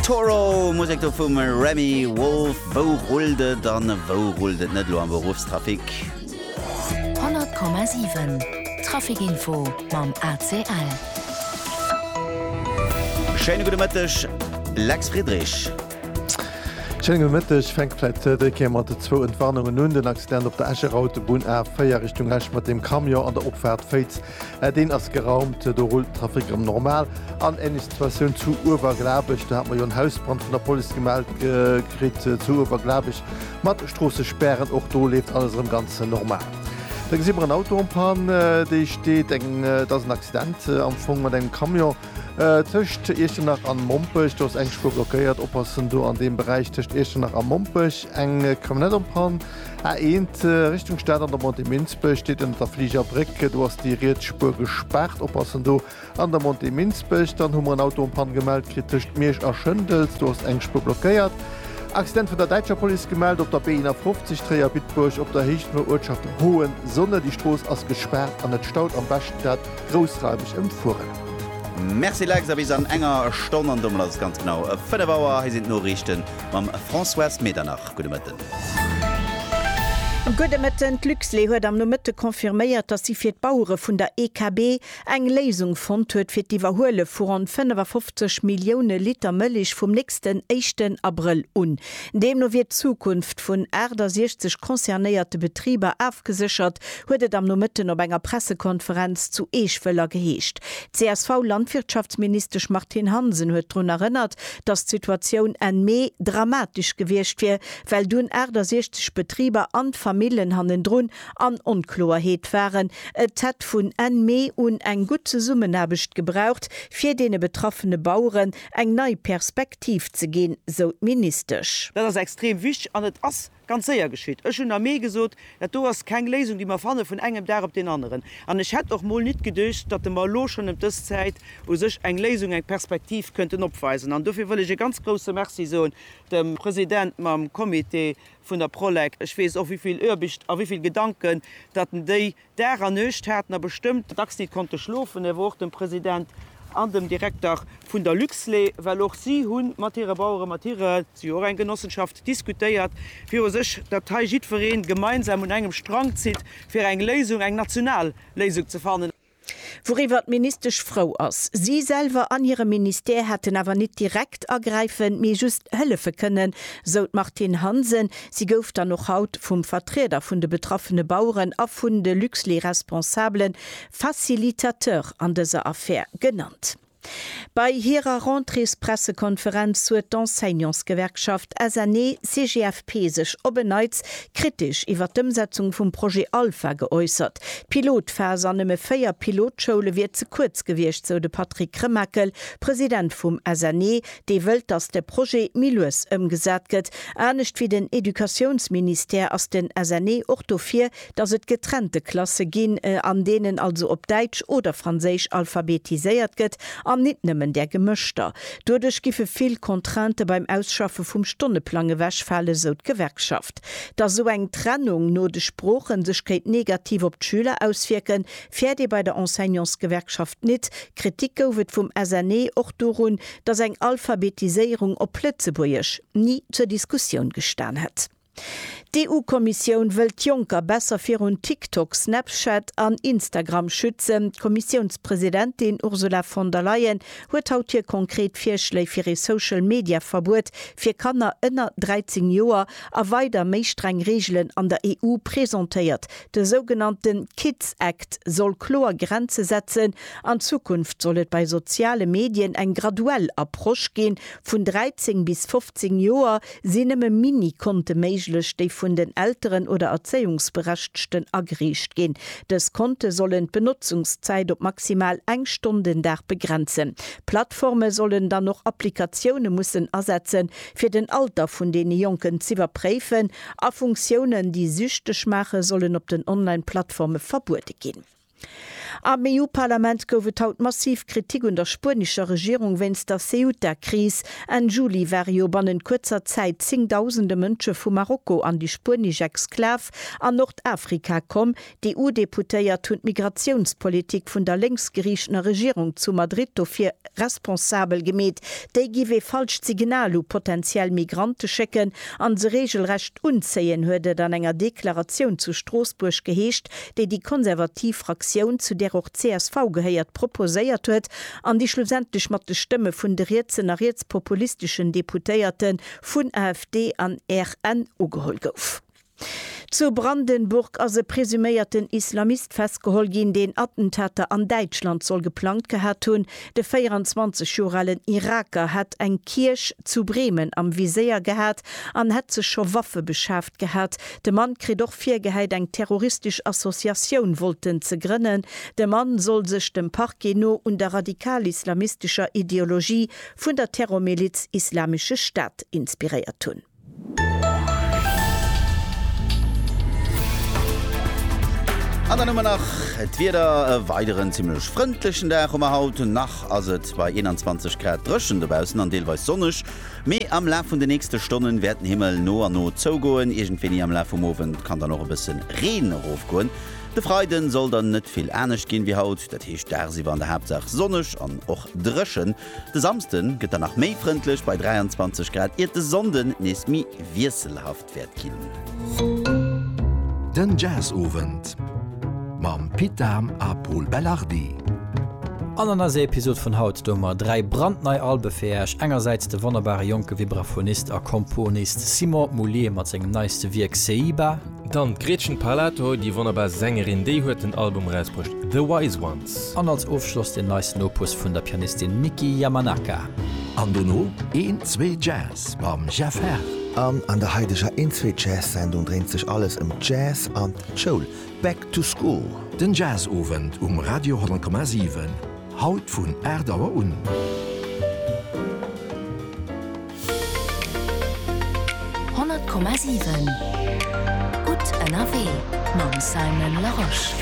Toro, Musek do vum Remi Wolf. Wou rullt et an wou rullt et net elo am Beruffstrafic? 100,7 Traficinfo mam ACL. Schéine gudde Mëtteg, Lex Friedrich. Schéine gudde Mëtteg. Fänke vläit dës Kéier mat de zwou Entwarnungen un. Den Accident op der Escher Autobunn A4 Richtung Esch mat dem Camion an der Opfaart Féiz Mä deen ass geraumt, do rullt den Trafic erëm normal. An ähnlech Situatioun zu Uewerglabech, do hat mer jo en Hausbrand vun der Police gemellt kritt zu Uewerglabech mat Stroossespären. Och do leeft alles erëm ganz normal. Da gesi mer en Auto en panne, dee steet, eng, et ass en Accident am Fong mat engem Camion tëscht Iechternach an Mompech. Do ass eng Spuer blockéiert. Oppassen do an deem Beräich tëscht Iechternach a Mompech, eng Camionnette en panne. A1, Richtung Stad an der Montée Minsbech, steet ënnert der Fliger Bréck. Do ass déi riets Spuer gespaart. Oppassen do an der Montée Minsbech. Dann hu mer en Auto en panne gemellt kritt tëscht Miersch a Schëndels. Do ass eng Spuer blockéiert. Accident vun der däitscher Police gemellt op der B51 Tréier-Bitburg op der Héicht vun der Uertschaft Hohensonne. Déi Strooss ass gespaart an et staut. Am beschten dat groussraimeg ëmfueren. Merci Lex, a bis an enger Stonn an domat ass et ganz genau 5 Auer. Hei sinn d'Noriichten. Mam Françoise Medernach, gudde Mëtten. Gudde Mëtten. D'Luxlait huet am Nomëtte confirméiert, datt si fir d'Bauere vun der EKB eng Léisung fonnt huet fir d'Iwwerhuele vu ronn 55 Millioune Liter Mëlich vum nächsten éischten Abrëll un. Deemno wier d'Zukunft vun 68 concernéierte Betriber afgeséchert, huet et am Nomëtten op enger Pressekonferenz zu Eech-Wëller geheescht. D'CSV-Landwirtschaftsministesch Martine Hansen huet drun erënnert, dass d'Situatioun Enn Mee dramatesch gewiescht wier, well dunn 68 Betriber an d'Famillen hannendrun an Onkloerheet waren. Et hätt vun Enn Mee un eng gutt Zesummenaarbecht gebraucht, fir deene betraffene Baueren eng nei Perspektiv ze ginn, sou d'Ministesch. Dat ass extrem wichteg an et ass Ganz séier geschitt. Ech hunn am Mee gesot, dat do ass keng Léisung, déi mer fanne vun engem Dag op deen aneren. An ech hätt och mol nit geduecht, datt e mer elo schonn ëm dës Zäit u sech eng Léisung, eng Perspektiv kënnten opweisen. An dofir wëll ech e ganz grouse Merci soen dem President mam Comité vun der Prolec. Ech weess och, wéi vill Oerbischt a wéi vill Gedanken, datt en déi, Dag a Nuecht haten a bestëmmt dacks nit konnte schlofen, awer och dem President an dem Direkter vun der Luxlait, well och si hu mat hire Baueren, mat hire, si hu och eng Genossenschaft, diskutéiert viru sech, datt hei jiddweree gemeinsam un engem Strang zitt, fir eng Léisung, eng national Léisung ze fannen. Wouriwwer d'Ministesch frou ass. Si selwer an hire Ministère hätten awer nit direkt agräifen, mee just hëllefe kënnen, sou d'Martine Hansen, Si gouf dann och haut vum Vertrieder vun de betraffene Baueren a vun de Luxlieresponsabele Facilitateur an dëser Affär genannt. Bei hirer Rentréespressekonferenz huet d'Enseignantsgewerkschaft SNE-CGFP sech op en Neits kritesch iwwer d'Ëmsetzung vum Projet Alpha geäussert. D'Pilotphas an nëmme véier Pilotschoule wier ze kuerz gewiescht, sou de Patrick Remakel, President vum SNE, dee wëllt, datt de Projet méi lues ëmgesat gëtt. Anescht wéi den Educatiounsministère ass den SNE och dofir, datt et getrennte Klasse ginn, an deenen also op Däitsch oder Franséisch alphabetiséiert gëtt, an nit nëmmen där gemëschter. Doduerch giffe vill Contraintë beim Ausschaffe vum Stonneplang ewechfalen, sou d'Gewerkschaft. Datt esou eng Trennung no de Sproochen sech kéint negativ op d'Schüler auswierken, Fäert ee bei der Enseignantsgewerkschaft nit. Kritik gouf et vum SNE och dorun, datt eng Alphabetiséierung op Lëtzebuergesch ni zur Diskussioun gestan hätt. D'EU-Kommissioun wëll d'Jonker besser virun TikTok, Snapchat an Instagram schützen. D'Kommissiounspresidentin Ursula von der Leyen huet haut hir konkret Virschléi fir ee Social-Media-Verbuet fir Kanner ënner 13 Joer a weider méi streng Reegelen an der EU presentéiert, De sougenannte Kids Act soll kloer Grenze setzen, an Zukunft soll et bei soziale Medien eng graduell Approche ginn, vun 13 bis 15 Joer sinn nëmme Mini-Konte méiglech, déi vun den Elteren oder Erzéiungsberechtgten ageriicht ginn. Dës Konte sollen d'Benotzungszäit op maximal eng Stonn den Dag begrenzen. Plattforme sollen dann och Applikatioune mussen asetzen, fir den Alter vun deene Jonken z'iwwerpréifen, A Funktiounen, déi süchteg maachen, sollen op den Online-Plattforme verbuede ginn. Am EU-Parlament gouf et haut massiv Kritik un der spuenescher Regierung wéinst der Ceuta-Kris. Enn Juli ware jo bannent kuerzer Zäit zéngdausende Mënsche vu Marokko an déi spuenesch Exklav an Nordafrika komm, D'EU-Deputéiert hunn d'Migratiounspolitik vun der lénksgeriichtener Regierung zu Madrid dofir responsabel gemeet. Déi giff ee falscht Signal u potentiell Migrante schécken an se reegelrecht unzéien, huet et an enger Deklaratioun zu Stroossbuerg geheescht, déi déi konservativ Fraktioun, zu där och csv gehéiert, proposéiert huet an déi schlussendlech mat de Stëmme vun de rietsen a rietspopulisteschen Deputéierte vun AfD an RN ugeholl gouf. Zu Brandenburg ass e presuméierten Islamist festgeholl ginn, deen Attentater an Däitschland soll geplangt gehat hunn. De 24 Joer alen Iraker hätt eng Kierch zu Bremen am Viséier gehat an hätt sech scho Waffe beschaaft gehat. De Mann kritt och virgehäit, eng terroristesch Associatioun wollten ze grënnen. De Mann soll sech dem Parquet no un der radikalislamistescher Ideologie vun der Terrormiliz Islamesche Staat inspiréiert hunn. An dann hu mer nach d'Wieder, e weideren zimmlech frëndlechen Dag hu mer haut. Nach ass et bei 21 Grad dréchen dobaussen an deelweis sonneg, mee am Laf vun de nächste Stonnen wäert den Himmel no an no zougoen. Iergendwéini am Laf vum Owend kann dann och e bësse Reen erofgoen. De Freiden soll dann net vill anescht ginn wéi haut, dat heescht dagsiwwer an der Haaptsaach sonneg an och dréchen. De Samsden gëtt dann nach méi frëndlech bei 23 Grad, iert de Sonnden nees méi wiesselhaft wäert ginn. Den Jazzowend mam Pit Dahm a Pol Belardi. An an eiser Episod vun haut doe mer 3 brandnei Albe fir Äech, engersäits de wonnerbare jonke Vibraphonist a Komponist Simon Moullier mat sengem neiste Wierk Seiba, Dann d'Gretchen Parlato, déi wonnerbar Sängerin, déi huet den Album erausbruecht The Wise Ones. An als Ofschloss den neisten Opus vun der Pianistin Miki Yamanaka. An dono een zwee Jazz mam Jeff Herr. An an der haideger een zwee Jazz Sendung dréint sech alles ëm d'Jazz an d'Schoul. Back to School. Den Jazz Owend um Radio 10,7. Haut vun 8 Auer un. Honnert Komma siwen, gutt ënnerwee mam Simon Larosche.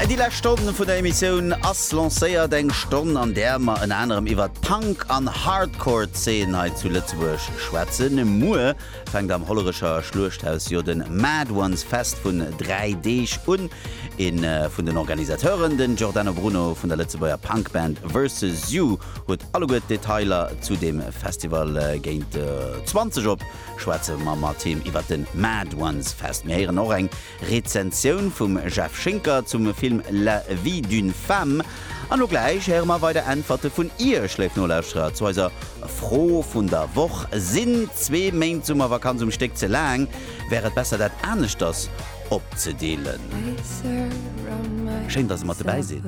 Déi lescht Stonn vun der Emissioun ass lancéiert. Eng Stonn, an där mer ënner anerem iwwert d'Punk an Hardcore-Zeen hei zu Lëtzebuerg schwätzen. Muer Fänkt am Hollerecher Schluechthaus jo den Mad Ones Fest vun 3 Deeg un. Een vun den Organisateuren, den Giordano Bruno vun der Lëtzebuerger Punkband Versus You huet alleguer d'Detailer zu deem Festival. Géint 20 op schwätze mer mat him iwwert den Mad Ones Fest. Mir héieren och eng Rezensioun vum Jeff Schinker zum Film La vie d'une femme an lo gläich héiere mer weider Äntwerte vun Iech, léif Nolauschterer, zu eiser Fro vun der Woch, Sinn zwee Méint Summervakanz um Stéck ze laang? Wär et besser dat aneschters opzedeelen? Schéin dass der mat dobäi sidd.